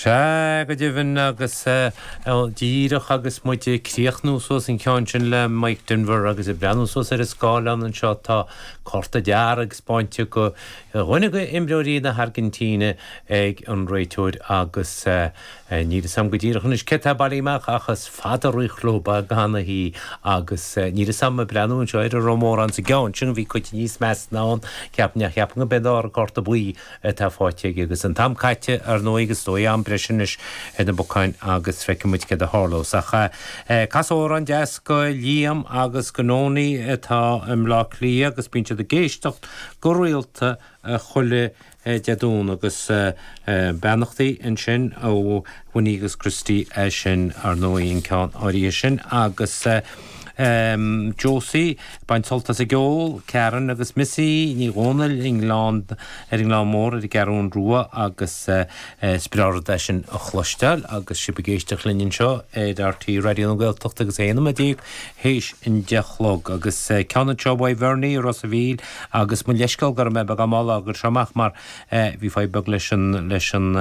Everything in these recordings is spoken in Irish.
Sea, go deimhin, agus díreach agus muid ag críochnú suas an ceann sin le Mike Denver agus ag breathnú suas ar an scáileán anseo, tá cárta dearg spáinte go dhuine d'imreoirí na hAirgintíne ag an réiteoir agus níl 'fhios a'm go díreach anois cé tá bailithe amach ach is fada roimh chlub a gcanathaí agus níl 'fhios a'm ag breathnú anseo ar an Rómáin sa gceann sin, bhí cuid níos measa ná an ceapainn ach cheapfainn gob é an dara cárta buí atá faighte aige agus an t-am caite, ar ndóigh, agus is dóigh am breise anois ar na bacáin agus feicfidh muid céard a tharlós. Ach cas amhrán deas go Liam agus go Noni atá i mBleá Cliath agus bíonn siad ag éisteacht go rialta chuile Dé Domhnaigh agus beannachtaí ansin ó Winnie agus Christy sin, ar ndóigh, an ceann áirithe sin agus. Josie, bain sult as ag ól, Karen agus Missy Ní Dhomhnaill i nGleann, ar an nGleann Mór ar an gCeathrún Rua agus is breá rud é sin a chloisteáil agus sibh ag éisteacht linn anseo ar RTÉ Raidió na Gaeltachta agus 11 nóiméad théis an deich a chlog agus ceann anseo uaidh Bhernie i Ros a' Mhíl agus mo leithscéal go raibh mé beagán mall á gcur seo amach mar a. Bhí fadhb beag leis an leis an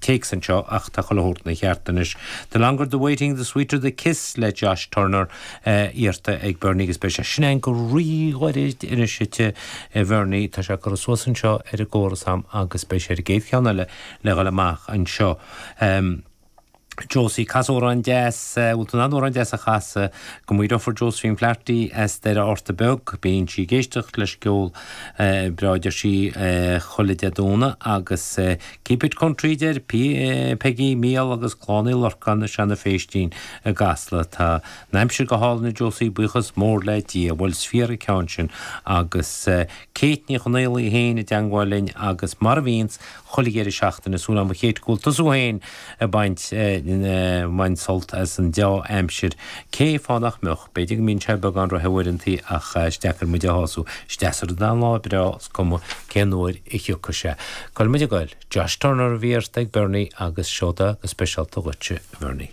téacs anseo ach tá chuile shórt ina cheart anois. The longer the waiting the sweeter the kiss le Josh Turner iarrta ag Bernie agus beidh sé sin againn go rí-ghairid anois a Bhernie. Tá sé ag cur suas anseo ar an gcóras a'm agus beidh sé ar an gcéad cheann eile le dhul amach anseo. Josie, Cas amhrán deas, bhfuil tú in ann amhrán deas a chasadh go mo dheirfiúr Josephine Flaherty as Doire Fheárta Beag, bíonn sí ag éisteacht leis an gceol breá deir sí chuile Dé Domhnaigh agus Keep it country a deir Peigí, Mícheál agus Clann Uí Lorcáin i Seana Phéistín i gCasla. Tá an aimsir go hálainn a Josie, buíochas mór le Dia, bhuel is fíor an ceann sin agus Kate Ní Chonaolaigh féin i dteangmháil linn agus mar a bhíonns, chuile dheireadh seachtaine, súil a'm a Kate go bhfuil tusa thú fhéin a' baint, a, mbaint sult as an deá-aimsir, cé, fáth nach mbeadh, b'fhéidir go mbíonn sé beagán róthe uaireantaí ach is deacair muid a shású, is deas a rud an lá breá, is cuma cén uair a thiocfas sé. Tá muid a ghoil. Josh Turner a bhí iarrtha ag Bernie agus seo'd go speisialta dhuitse a Bhernie.